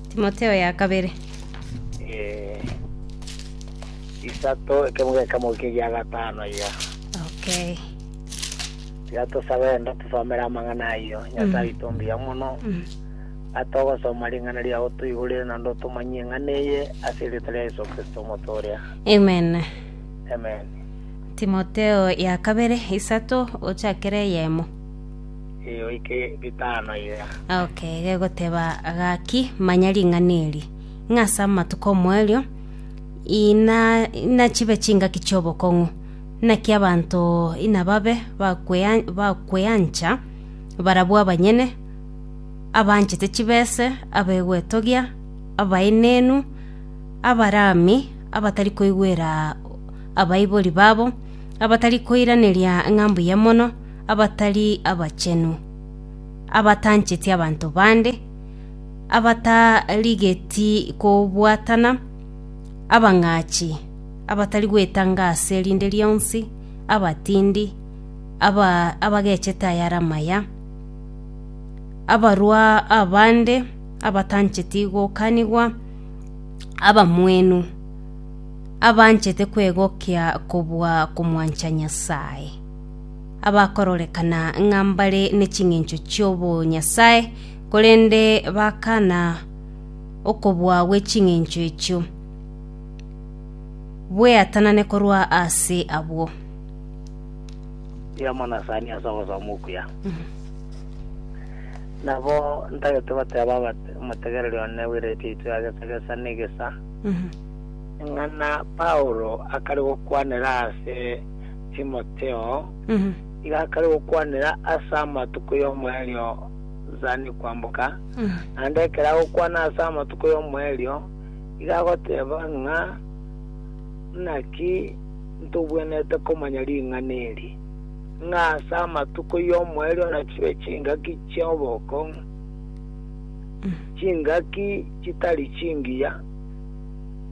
Timotheo ya kabere. Eh, isato ekemo gekemo kegia gatano iga Okay. tiga tosabe enda tusomere amang'ana ayio nyasaye oito mbuya mono Mm. atogosoma ring'ana riao toigurire naende otomanyie eng'ana eye ase erioto ria yesu kristo omotoria Amen. amen Timotheo ya kabere isato ochakere yemo. eyoike bitano iga. Okay, gegoteba gaki, manya ring'ana eri, ng'a ase amatuko omoerio ina inachibe chingaki chi'obokong'u, naki abanto inababe bakwea bakweancha, barabwo abanyene, abanchete chibese, abegwetogia, abaenenu, abarami, abatari koigwera abaibori babo, abatari koiraneria ng'a mbuya mono, abatari abachenu, abatancheti abanto bande, abatarigeti kobwatana, abang'achi, abatari gwetanga ase rinde rionsi, abatindi, aba- abagechete ayare amaya, abarua abande, abatancheti gokanigwa, abamwenu, abanchete kwegokia kobua komwancha Nyasae. abakororekana ng'a mbare ne ching'encho chi'obonyasae, korende bakana okobua gwe ching'encho echio, bweatanane korwa ase abwo. y'Omonasani ase ogosoma okuya. Nabo ntagete goteeba abate omotegereri one bw'Eredio yaito ya Gesagesa n'egesa, ing'ana Paulo akare gokwanera ase Timotheo, nigo akare gokwanera ase amatuko y'omoerio Zani kwamboka, naende ekero agokwana ase amatuko y'omoerio, igo agoteba ng'a naki ntobwenerete komanya ring'ana eri, ng'a ase amatuko y'omoerio nachibe chingaki chi'obokong'u, chingaki chitari chingiya,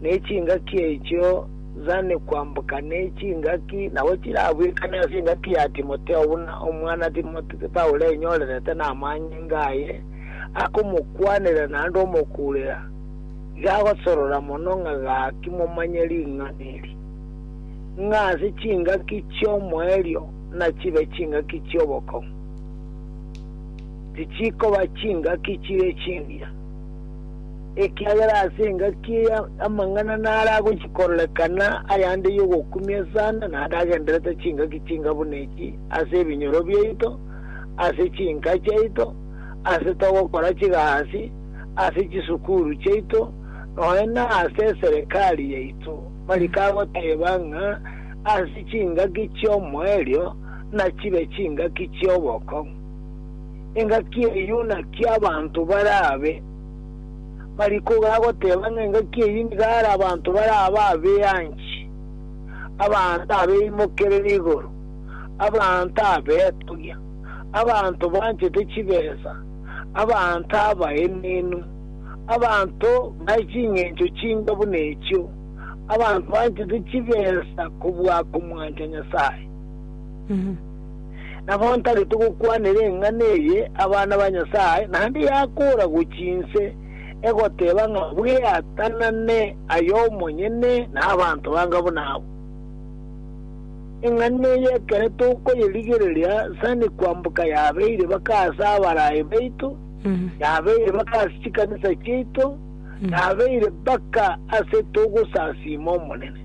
ne chingaki echio Zane kwamboka ne chingaki nabo chirabwekane ase engaki ya Timotheo buna omwana Timotheo Paulo enyorerete namanyinga aye akomokwanera naende omokuurera, iga agosorora mono ng'a gaki momanye ring'ana eri, ng'a ase chingaki chi'omoerio nachibe chingaki chi'obokong'u, tichikoba chingaki chire chingiya. Ekiagera ase engaki eye amang'ana naro agochia kororekana, ayande y'ogokumia sana, naende agenderete chingaki chinga buna echi ase ebinyoro biaito, ase chinka chiaito, ase togokora chigasi, ase chisukuru chiaito, nonya nase eserekari yaito. Mariko agoteba ng'a ase chingaki chi'omoerio nachibe chingaki chi'obokong'u. engaki eyio naki abanto barabe. Mariko gagoteba ng'a engaki eyio nigo are abanto barabe abeanchi, abanto abeimokerere igoro, abanto abetogia, abanto banchete chibesa, abanto abaenenu, abanto bae ching'encho chinga buna echio, abanto banchete chibesa kobua komwancha Nyasae. Nabo ntareti gokwanera eng'ana eye abana ba Nyasae, naende yakoora gochia inse, egoteeba ng'a bweatanane aye omonyene na abanto banga buna abwo. Eng'ana eye ekero tokoyerigereria sani kwamboka yabeire baka ase abaraai baito, yabeire baka ase chikanisa chiaito, yabeire baka ase togosasiima Omonene.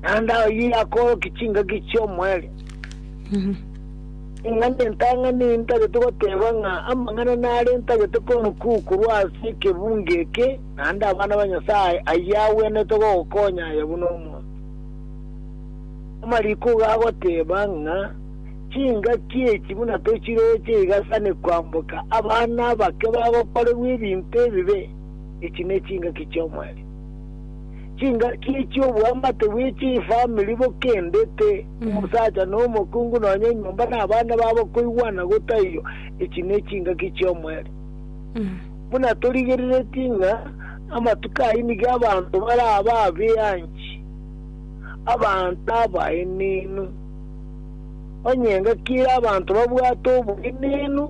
naende oyio akoorokia chingaki chi'omoerio. Ring'ana entang'ani ntagete goteeba ng'a amang'ana nare ntagete koonokigwa korwa ase ekebungo eke, naende abana ba Nyasae ayio agwenerete gogokonya aye buna omonto. Amariko iga agoteeba ng'a chingaki echi buna tochiroche iga sani kwamboka abana abake bagokorerwa ebinto ebibe, echi nechingaki chi'omoerio. chingaki chi'obwamate bwe chifamiri bokendete, omosacha na omokungu nonya enyomba na abana babo koigwana gotaiyo, echi ne chingaki chi'omoerio. Buna torigereretie ng'a amatuko ayio nigo abanto baraba abeanchi, abanto abaenenu, onye engaki ere abanto babwate oboenenu,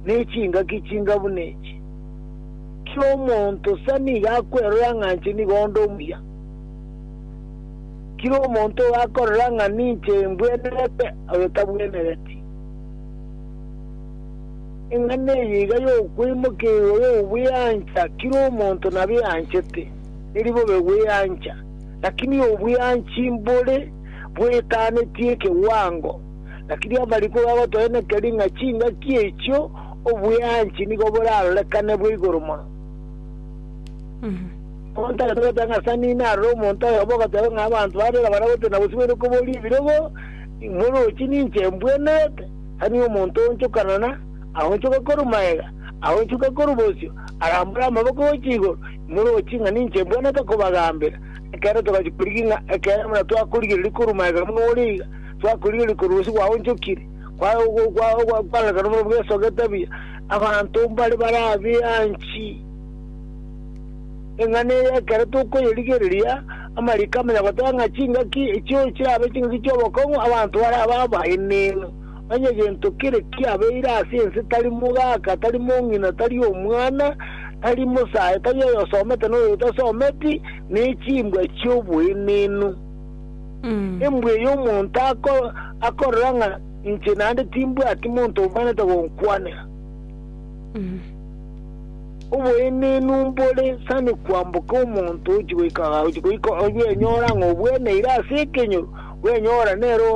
ne chingaki chinga buna echi. Kera omonto sa nigo akwerora ng'a inche nigo onde omuya. Kera omonto ogakorora ng'a ninche mbwenerete, oyo tabwenereti. Eng'ana eye iga y'okweimokeigwa y'obweancha, kera omonto nabeanchete, eri bobe gweancha, lakini obweanchi mbore bwetanetie ekewango. Lakini amariko gagotoenekeria ng'a chingaki echio obweanchi nigo borarorekane bwe igoro mono. Omonto tagete goteba ng'a ase nina arore omonto oyomo ogoteba ng'a abanto barera baria gose nabosibeire koboria ebirogo, imorochi ninche mbwenerete, tani omonto oonchokana na, aonchoka korwa magega, aonchoka korwa bosio, arambore amaboko gocha igoro, imorochi ng'a ninche mbwenerete kobagambera. Ekero togachia korigia ng'a ekero buna twakorigereria korwa magega buna ore iga, Twakorigereria korwa ase gwaonchokire kwaye ogw'okoarekana buna bw'esoka etabia, abanto mbare barabianchi. Eng'ana eye ekero tokoyerigereria, amariko amanya goteba ng'a chingaki echio chirabe chingaki chi'obokong'u abanto barabe abaenenu. Onye gento kere kiabeire ase ense, tari mogaka, tari mong'ina, tari omwana, tari mosae, tari oyosomete na oy'otasometi, nechimbwa chi'oboenenu. Embwa eye omonto akorora ng'a inche naende timbwati monto omanyete gonkwanera. Oboenenu mbore sani kwamboka omonto ochi goika ochi goika bwenyora ng'a obweneire ase ekenyoro bwenyora nero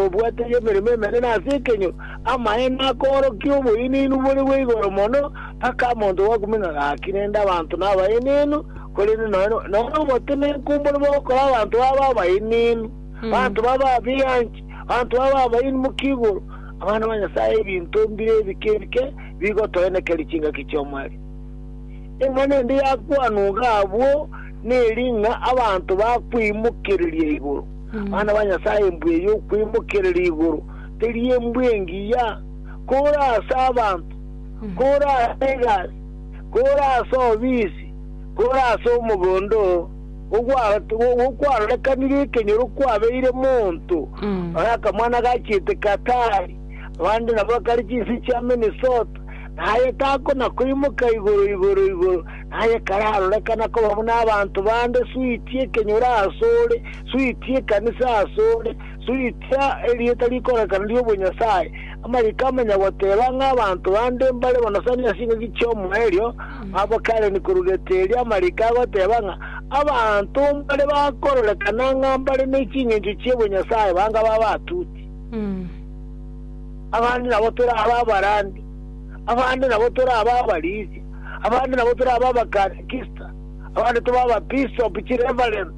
obwate emeremo emenene ase ekenyoro amaene akorokia oboenenu bore bweigoro mono mpaka monto gwakumia ng'a gaki rende abanto nabaenenu Korende nonya nomotima enkumboro bogokora abanto babo abaenenu, abanto babo abeanchi, abanto babo abaeni mokia igoro, abana ba Nyasae ebinto mbire ebike ebike bigotoenekeria chingaki chi'omweri. Eng'ana ende yakwanwa iga abwo neri ng'a abanto bakweimokereria igoro. Abana ba Nyasae embwa eye y'okweimokereria igoro teri embwa engiya, kore ase abanto, kore ase egasi, kore ase obisi, Kore ase omogondo oo gokwarorekanire ekenyoro kwabeire monto ore akamwana gachiete Katari, abande nabo bakare chinse chia Minnesota, na aye takona koimoka igoro igoro igoro, na aye kararorekana koba buna abanto bande, suitia ekenyoro ase ore, suitia ekanisa ase ore, suitia erieta rikororekana ri'obonyasae, Amariiko amanya goteeba ng'a abanto bande mbare bonasani ase engaki chi'omoerio, abo kare nikorureteria amariiko agoteeba ng'a abanto mbare bakororekana ng'a mbare ne chingencho chi'obonyasae banga babe atuti. Abande nabo torabe abarandi, abande nabo torabe abarisia, abande nabo torabe abakatekista, abande tobe ababisopu, chireverend,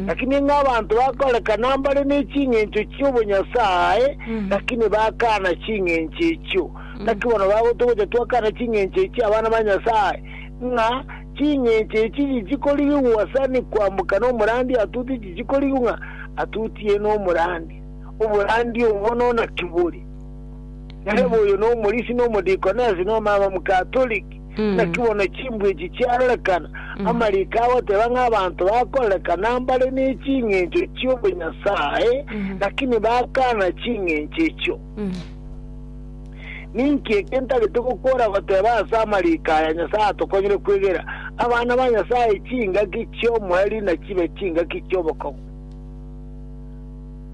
Lakini ng'a abanto bakorekana mbare ne ching'encho chi'obonyasae, lakini bakana ching'encho echio. Naki bono bagotogocha twakana ching'encho echi, abana ba Nyasae, ng'a ching'encho echi chichie korigigwa ase ni kwamboka nomorandia atuti chichie korigigwa ng'a atutie nomorandia. Oborandia obo no naki bore? Nere boyo nomorisi nomodikones nomama Mkatoliki. Naki bono chimbwa echi chiarorekana, amariiko agoteba ng'a abanto bakorerekana mbare ne ching'encho chi'obonyasae, lakini bakaana ching'encho echio. Ninki eke ntareti gokwora goteba ase amariiko aya Nyasae atokonyire kwegera abana ba Nyasae chingaki chi'omoerio nachibe chingaki chi'obokong'u?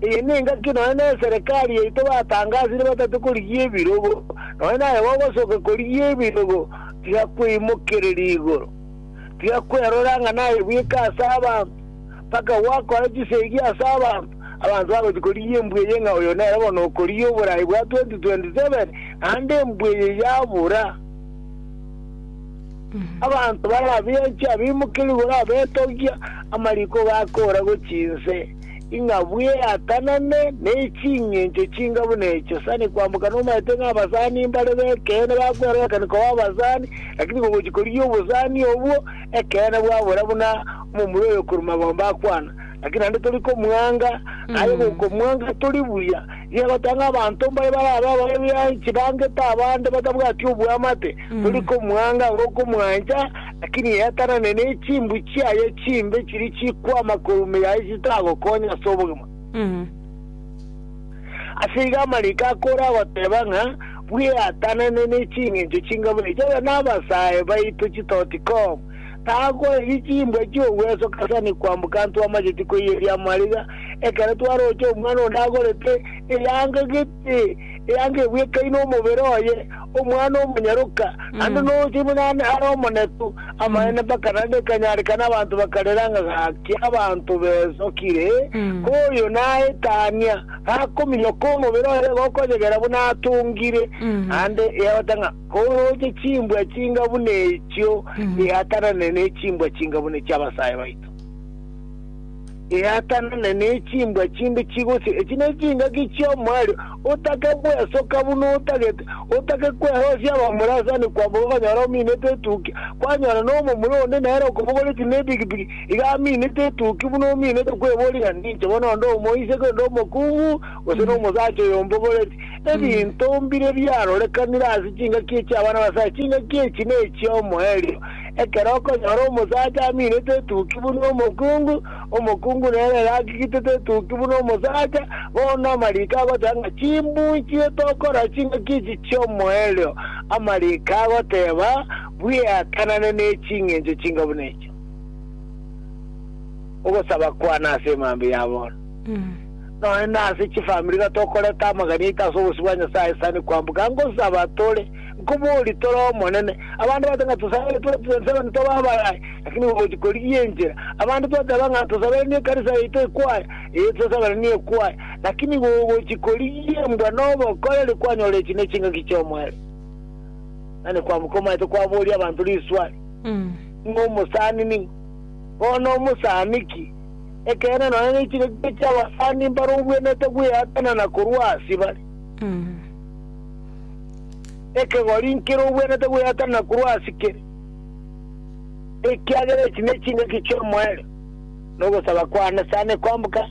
Eye nengaki nonya neserekari yaito batangasire batate korigia ebirogo, nonya naye gogosoka korigia ebirogo tiga kweimokereria igoro, tiga kwerora ng'a naye bweka ase abanto, mpaka gwakore chisegi ase abanto, abanto bagochia korigia embwa eye ng'a oyo nere bono okorigia oborai bwa 2027, naende embwa eye yabora. Abanto barabianche abeimokere igoro abetogia, amariko gakoora gochia inse. ing'a bweatanane nechingencho chinga buna echo. Sani kwamboka nomaete ng'a abasani mbare b'ekeene bakwerorekani koba abasani, lakini kogochia korigia obosani obwo, ekeene bwabora buna omomura oyo korwa magombe akwana. Lakini naende tori komwanga, aye gokomwanga tori buya, nigo egotanga abanto mbare barabe ababe b'eanchi, bangete abande batabwati obwamate. Tori komwanga anga okomwancha, lakini yatanane nechimbu chiaye chimbe chiri chikwama korwa ime yaye chitagokonya ase obogima. Ase igo amariko akore agoteba ng'a bweatanane ne chingencho chingabure echi, oyo nabasae baito chitoti com, takoebi chimbwa chiogwesoka ase ane kwamboka ntwamacheti koiyia riamariga, ekero twaroche omwana onde agorete eyanga gete. Ee, eanga ebwekaine omobere oye, omwana omonyaroka, naende noroche buna ande are omonetu. Amaene mpaka naende ekanyarekana abanto bakarera ng'a gaki abanto besokire, ko oyo naetania, gakominyoka omobere oye gokonyegera buna atongire, naende egota ng'a koroche chimbwa chinga buna echio, eatanane ne chimbwa chinga buna echi'abasae baito. eatanane nechimbwa chinde chigosie. Echi nechingaki chi'omoerio, otake gwesoka buna otagete, otake kwerosia abamorasani kwabo okonyora ominete etukia, kwanyora nomomura onde nere okobogoreti nepikipiki, iga aminete etukia buna ominete kweboria ng'a ninche bono onde omoiseke onde omokungu, gose nomosacha oyombogoreti. Ebinto mbire biarorekanire ase chingaki echi'abana ba Nyasae, chingaki echi nechi'omoerio, Ekero okonyora omosacha aminete etuki buna omokungu, omokungu nere gakigitete etuki buna omosacha, bono amariiko agoteba ng'a chimbuchire tokora ching'aki echi chi'omoerio, amariiko agoteba, Bweatanane neching'encho chinga buna echi. Ogosaba kwane ase emambia ya bono, nonya nase chifamiri iga tokoreta amagani aito ase obosio bwa Nyasaye, sani kwamboka ngosaba tore. Nkoboorie, tore omonene. Abande bagote ng'a tosabere tore twense abande tobe abayayi, lakini igo gochi korigia enchera. Abande toteba ng'a tosabere n'ekanisa yaito ekwaya, ee, tosabere nekwaya, lakini igo gochi korigia embwa nobokoreri kwanyora echi nechingaki chi'omoerio. Nani kwamoka omaete kwaboria abanto riswali, Ning'o omosani? Ning'o bono omosani? Ki? Ekeene, nonya nechingaki chi'abasani mbare obwenerete gweatanana korwa ase bare. ekegori nkerogwenete gweatanana korwa ase kere, ekiagera echi nechingaki chi'omoerio, na ogosaba kwane sane kwamboka.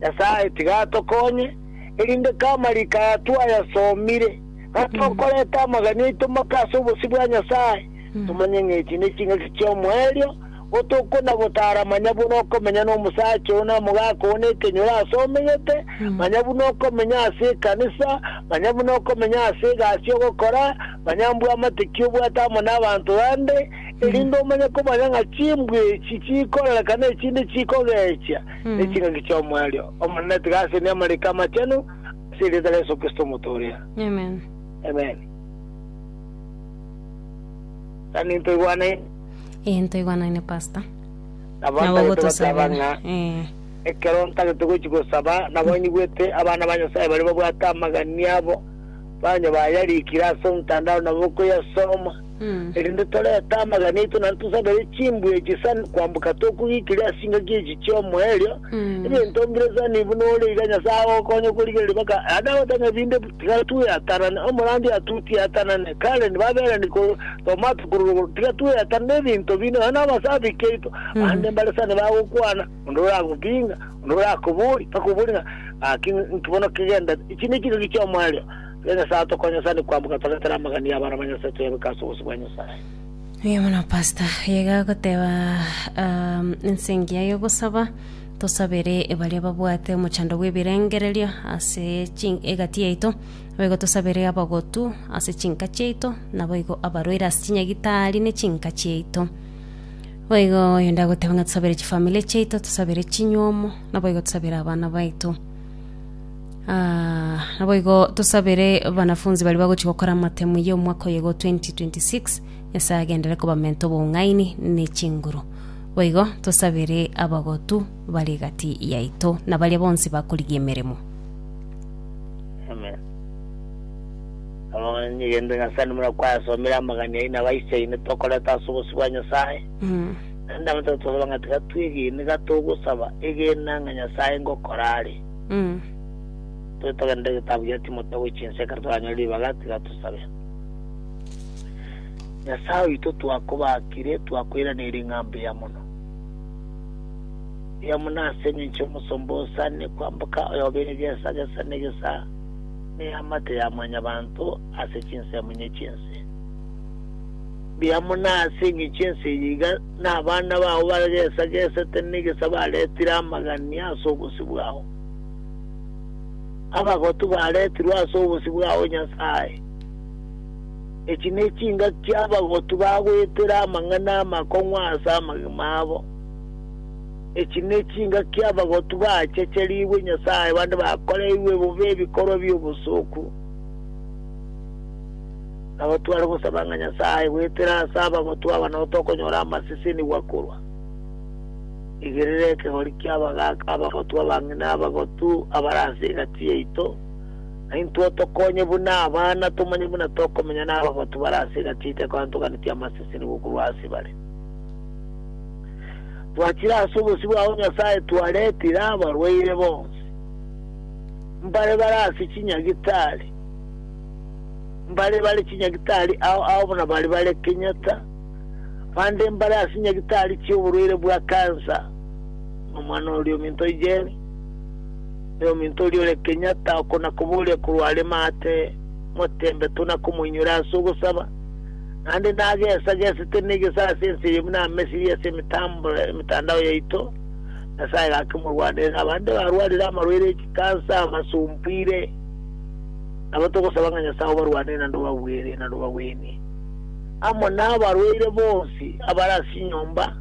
Nyasae, tiga atokonye, erinde k'amariko aya twayasomire, ng'a tokoreta amagani aito maka ase obosio bwa Nyasae, tomanye ng'a echi nechingaki chi'omoerio, Botuko na botaara manya buna okomenya nomosacha oo na mogaka oo nekenyoro aase omegete, manya buna okomenya ase ekanisa, manya buna okomenya ase egasi y'ogokora, manya mbwe amatiki obwate amo n'abanto bande, erinde omanye komanya ng'a chimbwe echi chikoorereka na echinde chikogechia, neching'aki chi'omoerio Omonene. Tiga aseni amariko amachenu ase erieta ria Yeso Kristo omotooria. Amen. Amen. Tani ntoigwanaine. Egento igwanaine pastor. Nabo Nabo ntagete gosaba ng'a gotosabera. Ee. ekero ntagete gochi gosaba nabo nyigwete abana ba Nyasaye baria babwate amagani abo banya bayarikire ase omtandao nabo koyasoma Mm. erinde torete amagani aito naende tosabere chimbwa echi sana kwamboka tokogikire ase chingaki echi chiomoerio Mm. ebinto mbire sana buna ore iga Nyasaye agokonye okorigereria baka naye agote ng'a ebinde Tiga tweatanane, omorandia atutie atanane, Karen baberani korwa Tomato korwa rogoro, tiga tweatanane ebinto binde nonya nabasabiki aito, bande mbare sana bagokwana, onde oragopinga, onde orakobori, bakobori ng'a gaki nki bono kegendete. Echi ne chingaki chi'omoerio. Tiga Nyasae atokonye sana kwamboka toretere amagani y'abana ba Nyasae toyabeke ase obosio bwa Nyasae. Mbuya mono pastor. Iga goteba um, ense engiya y'ogosaba Tosabere baria babwate omochando bw'ebirengererio ase egati yaito, naboigo tosabere abagotu ase chinka chiaito, naboigo abarwaire ase chinyagitari ne chinka chiaito. Boigo oyonde agoteba ng'a tosabere chifamiri chiaito, tosabere chinywomo, naboigo tosabere abana baito. Ah, naboigo tosabere abanafunzi baria bagochia gokora amatemu y'omwaka oyogo 2026, Nyasae agenderere kobamenta obong'aini ne chinguru. Boigo tosabere abagotu bare egati yaito, na baria bonsi bakorigia emeremo. Amen. Amang'ana nyegento Nyasae nimuna kwayasomire amagani aye nabaichaine tokoreta ase obosio bwa Nyasae. Naende nabatebi tosaba ng'a tiga twegene iga togosaba, egena ng'a Nyasae ngokora are. Tore togenderere egetabu gia Timotheo gochia inse ekero toranyore ribaga tiga tosabe. Nyasae oito twakobaakire, twakweiraneire ng'a mbuya mono. Mbuya mono ase engencho y'omosomba osaanire kwamboka, oyobeire gesa gesa negesa neamate ya mwanyabanto ase chinsemunye chi'ense. Mbuya mono ase engencho ense eye iga nabana bao bare gesa gesete negesa baretire amagania ase obosio bwao. Abagotu baretirwe ase obosio bwao, Nyasae. Echi nechingaki abagotu bagoetera amang'ana amakong'u ase amagima abo. Echi nechingaki abagotu baachecherigwe Nyasae bande bakoreirwe bobe ebikorwa bi'obosoku. Nabo tware gosaba ng'a Nyasae goetera ase abagotu aba nao tokonyora amasesenigwa korwa. Rigireria ekegori ki'abagaaka abagotu abang'ina abagotu abare ase egati yaito, na intwe otokonye buna abana, tomanye buna tokomenya nabagotu bare ase egati yaito ekwantoganitie amasesenigo korwa ase bare. Twachire ase obosio bwao Nyasae twaretire abarwaire bonsi, mbare bare ase chinyagitari, mbare bare chinyagitari ao ao buna bari bare Kenyatta, bande mbare ase nyagitari chioborwaire bwa kansa, nomwana oria ominto Ijeri, Ne ominto oria ore Kenyatta oko na koboria korwa are maate motembe to na komoinyora ase ogosaba, naende nagesa gesete ne egesara ase ense eye buna amesiri ase emetandao yaito, Nyasaye gake morwanerere abande barwarire amarwaire e chikansa, abasumbuire, nabo togosaba ng'a Nyasaye obarwanere naende obagwere naende obagwenie, amo nabarwaire bonsi abare ase chinyomba.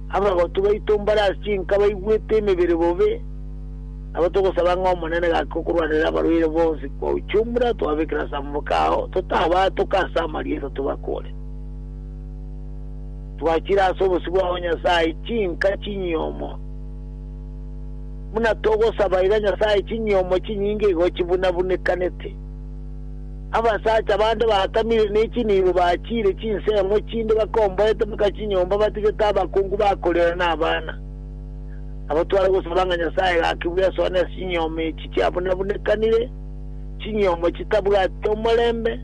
Abagotu baito mbare ase chinka baigwete emebere bobe, nabo togosaba ng'a Omonene gake okorwanera abarwaire bonsi kwa uchumura twabekire ase amaboko ao, totabaatoka ase amarieta tobakore. Twachire ase obosio bwao Nyasae chinka chinyiomo, buna togosaba iga Nyasae chinyiomo chinyinge igo chibunabunekanete. Abasacha bande bakamire ne chinibo bachiire chinsemo chinde bakomboete mpaka chinyomba batigete abakungu bakorera na abana. Nabatware gosaba ng'a Nyasae gaki bwesoa ne chinyoma echi chiabunabunekanire, chinyoma chitabwati omorembe,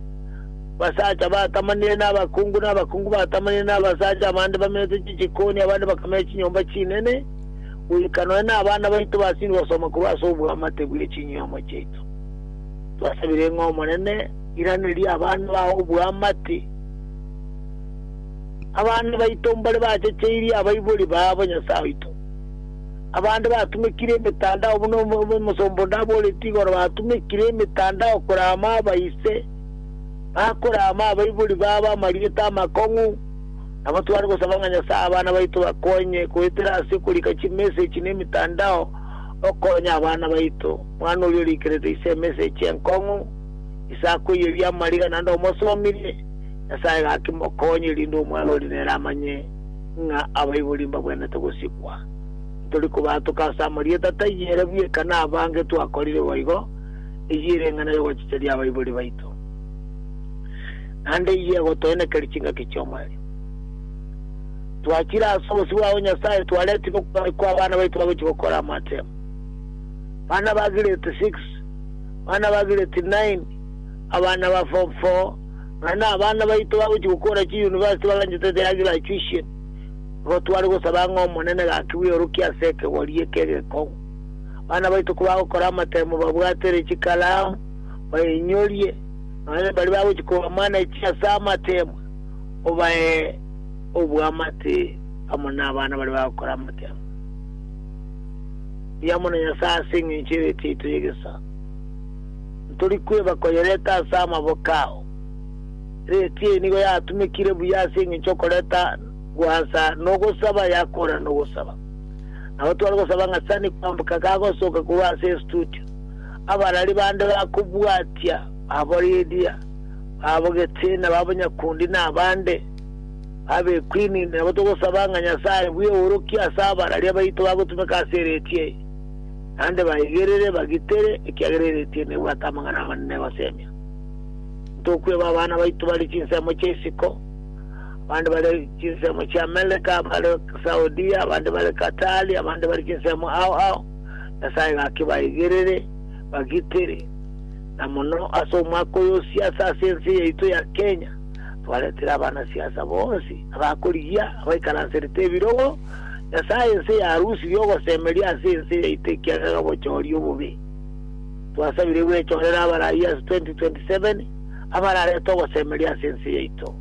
basacha batamanire na abakungu, na abakungu batamanire na abasacha, abande bamenyete chichikoni, abande bakamenya chinyomba chinene, goika nonya na abana baito basiri gosoma korwa ase obwamate bwe chinyoma chiaito. Twasabire ng'a Omonene iranerie abana bao oboamate, abana baito mbare bachecheirie abaibori baabo Nyasae oito. Abande batumekire emetandao buna omosomba onde aboretie igoro batumekire emetandao korama abaise, bakorama abaibori baabo amarieta amakong'u. Nabo tware gosaba ng'a Nyasae abana baito bakonye goetera ase okorika chimessage na emetandao, okonye abana baito. Mwana oria orikerete ise emesegi enkong'u, ise akoiyeria amariga naende omosomirie, Nyasae gaki mokonye, erinde omwana oria nere amanye ng'a abaibori mbagwenerete gosikwa. Ntori kobaatoka ase amarieta taiyo ere bweka nabange twakorire boigo, eyio ere eng'ana y'ogochicheria abaibori baito, naende eyio egotoenekeria chingaki chi'omoerio. Twachire ase obosio bwabo Nyasae, twaretigwe kw'abana baito bagochia gokora amatemo. bana ba grade six, bana ba grade nine, abana ba form four, ng'a nabana baito bagochia gokora chiuniversity baganchete their graduation, nigo tware gosaba ng'a Omonene gaki bweorokie ase ekegori eke egekong'u. Abana baito kobagokora amatemo babwatere chikalamu, bainyorie, nonya baria bagochia kobamanage ase amatemo, obae oboamate amo nabana baria bagokora amatemo. riamo na Nyasae ase engencho y'Ebiato yaito y'egesaku. Ntori kweba koyereta ase amaboko ao. Ebiato eye nigo yatumekire buya ase engencho y'okoreta gwansa nogosaba yakorana nogosaba. Nabo tware gosaba ng'a Sani kwamboka kagosoka korwa ase estudio, abarari bande bakobwatia, babo Lydia, babo Getsina, babo Nyakundi na abande. Abekwini, nabo togosaba ng'a Nyasae bw'eorokia ase abararia baito bagotumeka ase ereetia eri, naende baigerere, bagitere, ekiagera ereetia eri nebwate amang'ana amanene gosemia. Ntokweba abana baito bare chinsemo chia isiko, abande bare chinsemo chia Amereka, bare Saudia, abande bare Katari, abande bare chinsemo ao ao, Nyasae gaki baigerere, bagitere, na mono ase omwaka oyo osiase ase ense yaito ya Kenya, Twaretire abanasiasa bonsi abakorigia, abaikaranserete ebirogo, Nyasae ense yarusirie ogosemeria ase ense yaito ekiagera obochori obobe. Twasabire gwechorera abarai ase 2027 abararete ogosemeria ase ense yaito.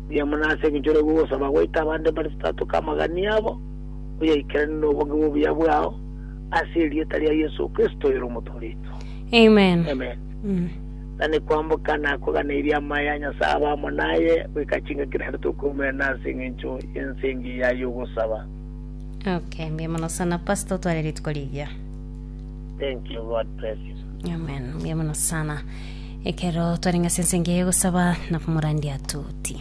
Mbuya mono ase engencho ore gogosaba goita abande mbare totatoke amagani abo, oyaikeranie nobonge bw'obuya bwao, ase erieta ria Yeso Kristo oyore Omotooria oito. Amen. Amen. na nekwamboka nakoganeirie amaya a Nyasae abe amo naye goika chingaki naende tokoumena ase engencho y'ense engiya y'ogosaba. Okay, mbuya mono sana Pastor, tware rituko rigiya. Thank you, God bless you. Amen, mbuya mono sana. Ekero twarenge ase ense engiya y'ogosaba, nabo morandia toti.